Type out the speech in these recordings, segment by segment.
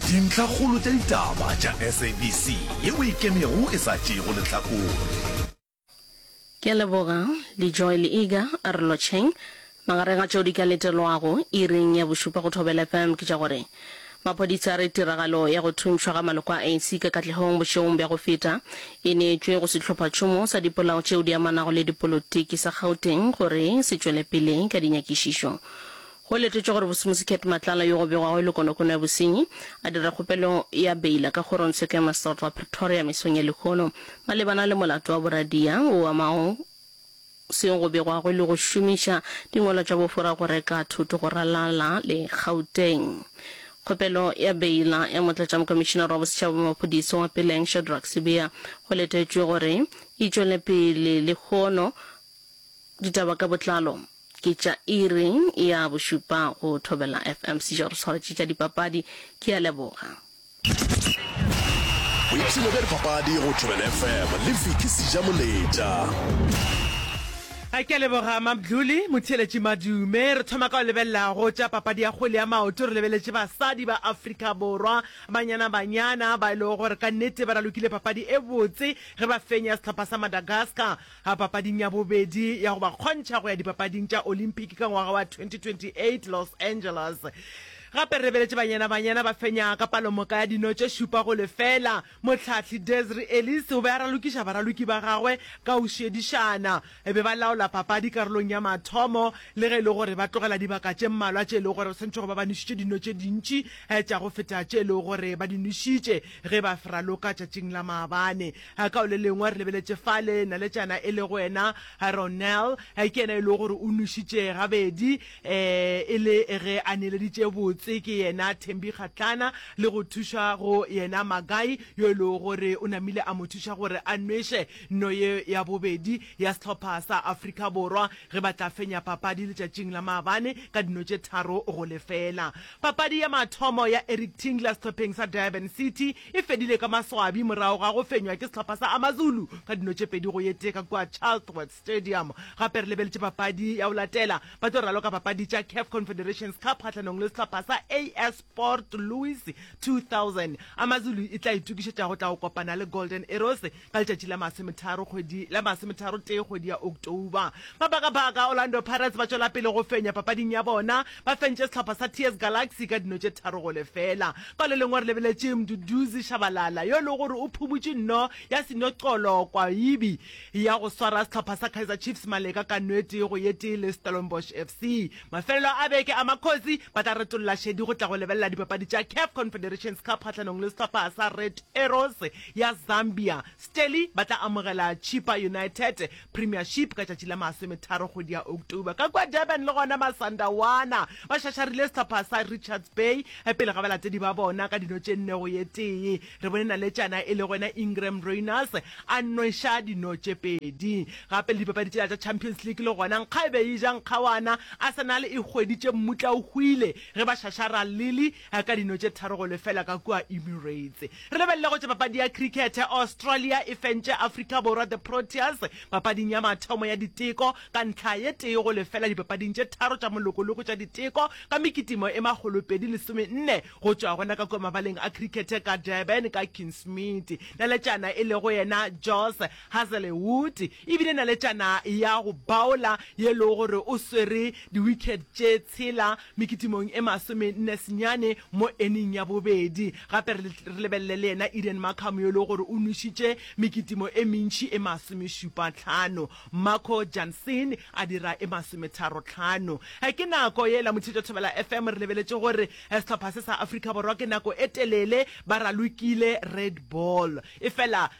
Dintlhakgolo tša ditaba tša SABC ye o e kemego e sa tšeego lehlakore. Ke a leboga, Lejoy Leaga a re lotšheng. Magareng a tšeo di ka letelwago iring ya bošupa go Thobela FM ke tša gore, Maphodisa a re tiragalo ya go thuntšhwa ga maloko a ANC ka katlehong bošegong bja go feta e neetšwe go sehlophatšhomo sa dipolao tšeo di amanago le dipolotiki sa Gauteng gore se tšwelepele ka dinyakišišo Go letetšwe gore Bosemosi Cat Matlala yo go begwago e le konokono ya bosenyi a dira kgopelo ya beila ka kgorongtsheko ya maseterata wa Pretoria mesong ya lehono malebana le molato wa boradia o amago seo go begwago e le go šomiša dingwalwa tša bofora go reka thoto go ralala le Gauteng. Kgopelo ya beila ya Motlatšamokomišinara wa Bosetšhaba wa Maphodisa wa Peleng Shadrack Sibiya go letetšwe gore e tšwele pele lehono. Ditaba ka botlalo. Ke tša iri ya bošupa go Thobela FM Sejo re swaretše tša dipapadi. Ke a leboga. Boipshino bja dipapadi go Thobela FM le Vicky Sejamoletša. A ke a leboga Mamdluli. Motheeletši Madume, re thoma ka go lebelela go tša papadi ya kgwele ya maoto. Re lebeletše basadi ba Afrika Borwa, Banyana Banyana, ba e lego gore ka nnete ba ralokile papadi e botse ge ba fenya sehlopha sa Madagascar. A papading ya bobedi ya go ba kgontšha go ya Dipapading tša Olympic ka ngwaga wa 2028 Los Angeles. Gape re lebeletše Banyana Banyana ba fenya ka palomoka ya dino tše šupa go lefela. Mohlahli Desri Ellis o be a ralokiša baraloki ba gagwe ka go šedišana. E be ba laola papadi karolong ya mathomo le ge e le gore ba tlogela dibaka tše mmalwa tše e lego gore ba swanetše go ba ba nwešitše dino tše dintši tša go feta tše e lego gore ba di nwešitše ge ba fraloka tšatšing la maabane. Ka o le lengwe re lebeletše fale, naletšana e lego ena Ronel, ke yena e lego gore o nwešitše gabedi e le ge a neeleditše botse, ke yena Thembi Kgatlana, le go thuša go yena Magae, yo e lego gore o namile a mo thuša gore a nweše no ye ya bobedi ya sehlopha sa Afrika Borwa ge ba tla fenya papadi letšatšing la maabane ka dino tše tharo go lefela. Papadi ya mathomo ya Eric Tinkler sehlopheng sa Durban City e fedile ka maswabi morago ga go fenywa ke sehlopha sa AmaZulu ka dino tše pedi go ye tee ka kua Chatsworth Stadium. Gape re lebeletše papadi ya go latela, ba tlo raloka papadi tša Caf Confederations Cup kgahlanong le sehlopha sa AS Port Louis 2000. AmaZulu e tla itokišetša go tla go kopana le Golden Arrows Ka letšatši la masometharo kgwedi la masometharo tee kgwedi ya October, ba baka baka Orlando Pirates ba tšwela pele go fenya papading ya bona, ba fentše sehlopha sa TS Galaxy ka dino tše tharo go lefela. Ka le lengwe re lebeletše Mduduzi Shabalala yo e lego gore o phumutše nno ya seno qolo kwa ibi ya go swara sehlopha sa Kaizer Chiefs maleka ka no e tee go ye tee le Stellenbosch FC. Mafelelo a beke a Makhosi ba tla retolla šedi go tla go lebelela dipapadi tša Caf Confederations Cup kgahlanong le sehlopha sa Red Arrows ya Zambia, Stelly ba tla amogela Chippa United Premiership ka tšatši la masometharo kgwedi ya October. Ka kua Durban le gona Masandawana ba šašarile sehlopha sa Richards Bay pele ga balatedi ba bona ka dino tše nne go ye tee. Re bone naletšana e lego yena Ingram Rayners a nweša dino tše pedi. Gape le dipapadi tšela tša Champions League le gona nkga e be e ja nkgawana. Arsenal e hweditše mmutla o hwile ge ba šašara Lille. a ka dino tše tharo go lefela ka kua Emirates. Re lebelele go tšwa papadi ya crickete, Australia e fentše Afrika Borwa the Proteas papading ya mathomo ya diteko ka ntlha ye tee go lefela dipapading tše tharo tša molokologo tša diteko ka mekitimo e makgolopedi lesome nne go tšwa gona ka kua mabaleng a crickete ka Durban ka Kingsmead. Naletšana e lego yena Jos Hazelwood e bile naletšana ya go baola ye le gore o swere diwikhet tše tshela mekitimong e masomenne senyane mo eneng ya bobedi. Gape re lebelele le yena Eden Markham yo le gore o nwešitše mekitimo e mentši e masomešupatlhano. Marco Jansen a dira e masometharotlhano. Ke nako yela Mothetšwa Thobela FM re lebeletše gore sehlopha se sa Afrika Borwa ke nako e telele ba ralokile red ball efela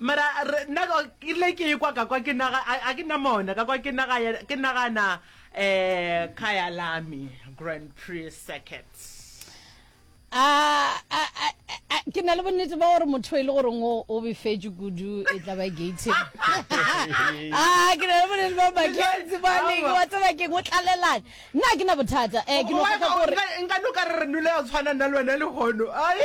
Mara re, nna ke ile ke ekwa ka kwa ke naga, a, a ke nna mona, ka kwa ke naga, ke nagana, eh, ka ya Lamy Grand Prix Circuit. A, a, a, a, ke na le bonnete ba gore motho e le goreng o, o befetše kudu e tla ba gating. A, ke na le bonnete ba Mackenzie ba neng, wa tseba keng, o tlalelane. Nna ga ke na bothata. Eh, ke no kgotha ke gore. Nka, nka no ka re re nole ya tshwana nna le wena le hono. Ai.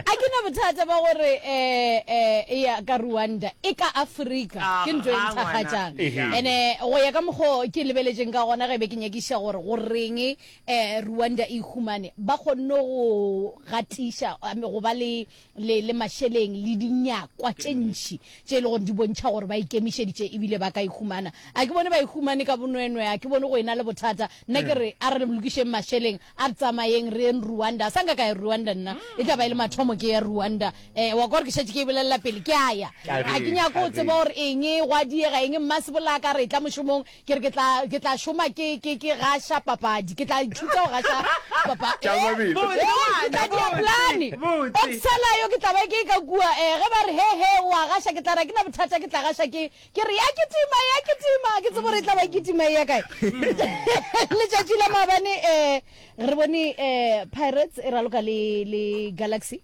A ke na bothata ba gore eh, eh, e ya ka Rwanda, e ka Afrika, Ah, ke ntho e ga, ngwana. nthakgatšang. Ehe. Ene, go ya ka mokgwa o ke lebeletšeng ka gona ge be ke nyakiša gore goreng eh, Rwanda e ihumane, ba kgonne go gatiša, I mean, go ba le le, le mašeleng le dinyakwa tše ntši tše e le gore di bontšha gore ba ikemišeditše ebile ba ka e humana. A ke bone ba e humane ka bonwenwe, a ke bone go e na le bothata. Nna ke re, a re lokišeng mašeleng, a re tsamayeng re yeng Rwanda. A sa nka ka ya Rwanda nna, e tla ba e le mathomo ke ya Rwanda. Eh, wa kwa gore ke šetše ke e bolelela pele, ke a ya. Ga ke nyake go tseba gore eng, gwa diega eng, mmasepolaka a re etla mošomong, Ke re ke tla, ke tla šoma ke, ke, ke gaša papadi. Ke tla ithuta go gaša papa, Tša eh, Mabele. Botse, eh, ke ngwana, tla dia plane. botse, botse. Boxela yo ke tla ba ke e ka kua, eh, ge ba re, he, he, o a gaša, ke tla re, ha ke na bothata, ke tla gaša ke, ke re, ya kitima, ya kitima, ha ke tsebe gore e tla ba e kitima e ya kae. Letšatši la maabane, eh, re bone, eh, Pirates e raloka le, le Galaxy.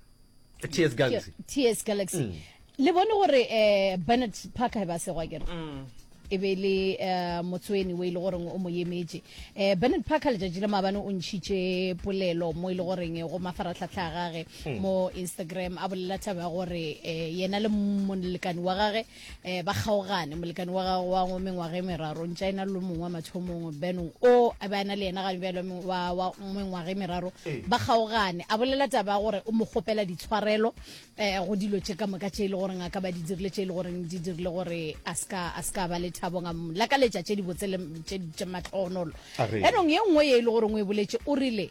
ts galaxy ts galaxy mm. le bone gore um eh, bernard parker ba segwa kere mm. e be le eh, motsweni o e le goreng o mo emetše um eh, bernard parker letšatši le maabane o ntšhitše polelo mo e le goreng go mafaratlhatlha a gage mm. mo instagram a bolela thaba ya gore um yena le molekane wa gage eh ba kgaogane molekane wa gago wa ngo mengwaga e meraro ntša ena lo mongwe wa mathomong benong o a be a na le yena ga bjalo wa mengwaga e meraro ee. ba kgaogane a bolela taba gore o mo kgopela ditshwarelo eh go dilo tše ka moka tše e le gore ngaka ba di dirile tše e le gore di dirile gore a ska a ska ba le thabo nga la ka letša tše di botse le tše tše matlhonolo benong ye nngwe ye e le gore o e boletse o rile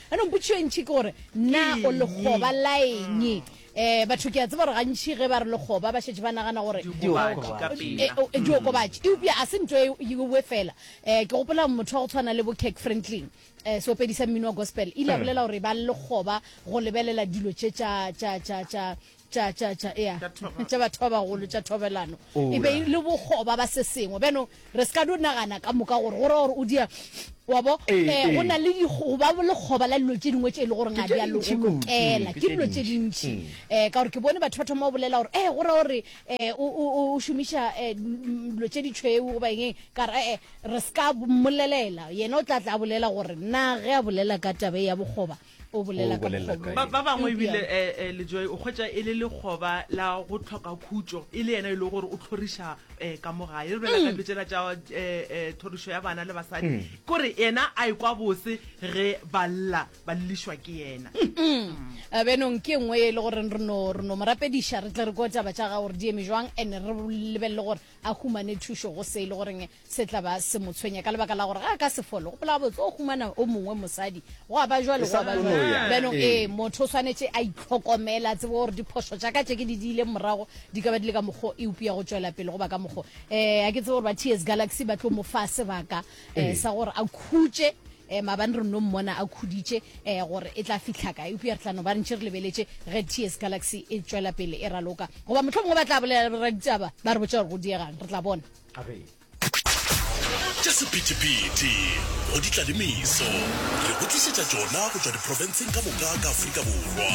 Anong potšišo e ntši ke gore na o lekgoba la eng? um batho ke a tseba gore gantši ge ba re lekgoba ba šetše ba nagana gore diokobatši eupša a se nto ewe fela um ke gopola motho wa go tshwana le bo kirk franklin um seopedi sa mmino wa gospel ile a bolela gore ba lekgoba go lebelela dilo tše tša tša tša tša ea tša batho ba bagolo tša thobelano e be le bogoba ba se sengwe beno re se ka do nagana ka moka gore gore gore o dia wa bo eh, eh, eh. go na le go ba le goba la dilo tše dingwe tše e le gore ga di a lokela ke dilo tše dintši um mm. ka gore ke bone batho ba thoma o bolela gore e gore gore um o šomiša um dilo tše ditšhweu goba eng ka re ee re se ka mmolelela yena o tla tla bolela gore na ge a bolela ka tabe ya bogoba o bolela ka bokgobong ba bangwe ebile um lejoy o kgwetsa e le lekgoba la go tlhoka khutso e le yena e le gore o tlhoriša um ka mo gae re bela ka dilo tsela tsa um thorišo ya bana le basadi kore yena a ekwa bose ge ba lla ba llišwa ke yena benong ke nngwe e le gore re no re no morapediša re tle re ko taba tša ga gore di eme jwang and re lebelele gore a humane thušo go se e le goreng Se tla ba se mo tshwenya ka lebaka la gore ga a ka se fole. Gopola gabotse, o humana o mongwe mosadi. Gwa ba jwale, gwa ba jwale. Bjano, ee, motho o swanetše a itlhokomela, a tsebe gore diphošo tša ka tše ke di diileng morago di ka ba di le ka mokgwa e upea go tšwela pele goba ka mokgwa. Eh, a ke tsebe gore ba TS Galaxy ba tlo mo fa sebaka eh, sa gore a khutše eh, mabane re nno mmona a khuditše eh, gore e tla fihla ka eupša re tla no ba ntše re lebeletše ge TS Galaxy e tšwela pele e raloka goba mohlho mongwe ba tla bolela raditaba ba re botša gore go diegang re tla bona tša sephethephethe go di tla le meso re go tlišetša tšona go tšwa diprofenseng ka moka ka Afrika Borwa.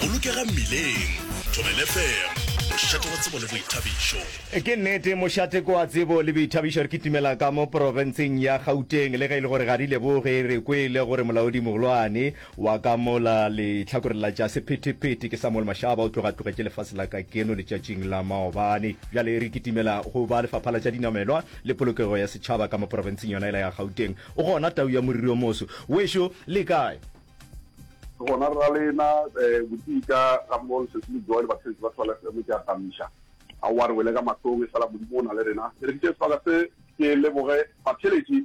Bolokega mmileng, Thobela FM, mošate wa tsebo le boithabišo. Ke nnete, mošate ke wa tsebo le boithabišo. Re kitimela ka mo profenseng ya Gauteng le ge e le gore ga re leboge re kwele gore molaodimogolwane Wa ka mola lehlakoreng la tša sephethephethe, ke Samuel Mashaba o tlogatlogetše lefase la ka keno letšatšing la maobane. Bjale re kitimela go ba Lefapha la tša Dinamelwa le Polokego ya Setšhaba ka mo porofenseng yona yela ya Gauteng. O gona tau ya moriri o moso? Wešo le kae? Re gona rralena, botee ka ga mo lesese le jowa le basebetsi ba Swale FM. Ke a tamiša aowa re wele ka mahlong e sa la Modimo o na le rena. Ke re ke tšee sebaka se ke leboge batheeletši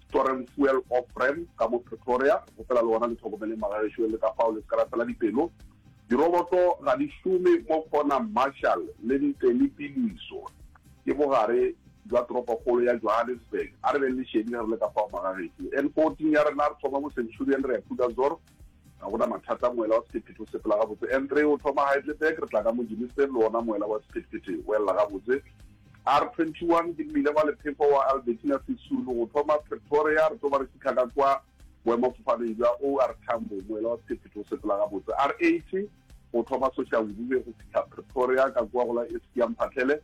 Soren Fuel Ofrem ka mo Pretoria, opela le wena le hlokomeleng magagešo le ka fao le se ka la fela dipelo. Diroboto ga di šome mo Conham Marshall le ntle le piloiso ke bogare bja toropokgolo ya Johannesburg. A re beng lešedi ge re le ka fao magagešo. N14 ya rena re thoma mo Centurion re ya Krugersdorp. ga gona mathata moela wa sephethephethe o sepela gabotse n3 o thoma heidelberg re tla ka mojimisteng le ona moela wa sephethephethe o elela gabotse r21 ke mmile wa lephefo wa albertina sesulu go thoma pretoria re tlo ba re fitlha ka kwa boemafofaneng jwa or tambo moela wa sephethephethe o sepela gabotse r80 go thoma soshangube go fitlha pretoria ka kwa go la eskia mphatlhele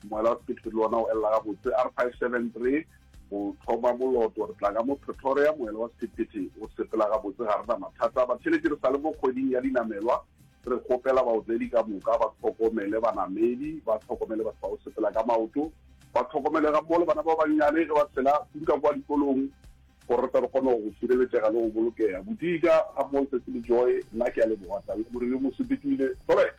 moela wa sephethephethe le ona o elela gabotse r573 Go thoma moloto, re tla ka mo Pretoria, moela wa sephethephethe o sepela gabotse, ga re na mathata. Batheeletši re sa le mo kgweding ya dinamelwa, re kgopela baotledi ka moka ba tlhokomele banamedi, ba tlhokomele batho ba go sepela ka maoto, ba tlhokomele ga mmogo le bana ba bannyane ge ba tshela kudu kwa dikolong, gore re tle re kgone go sireletšega le go bolokega. Bodika, ga mmogo le Cecily Joy, nna ke a leboga, Tau Morebi o mo sepetile. Sorry.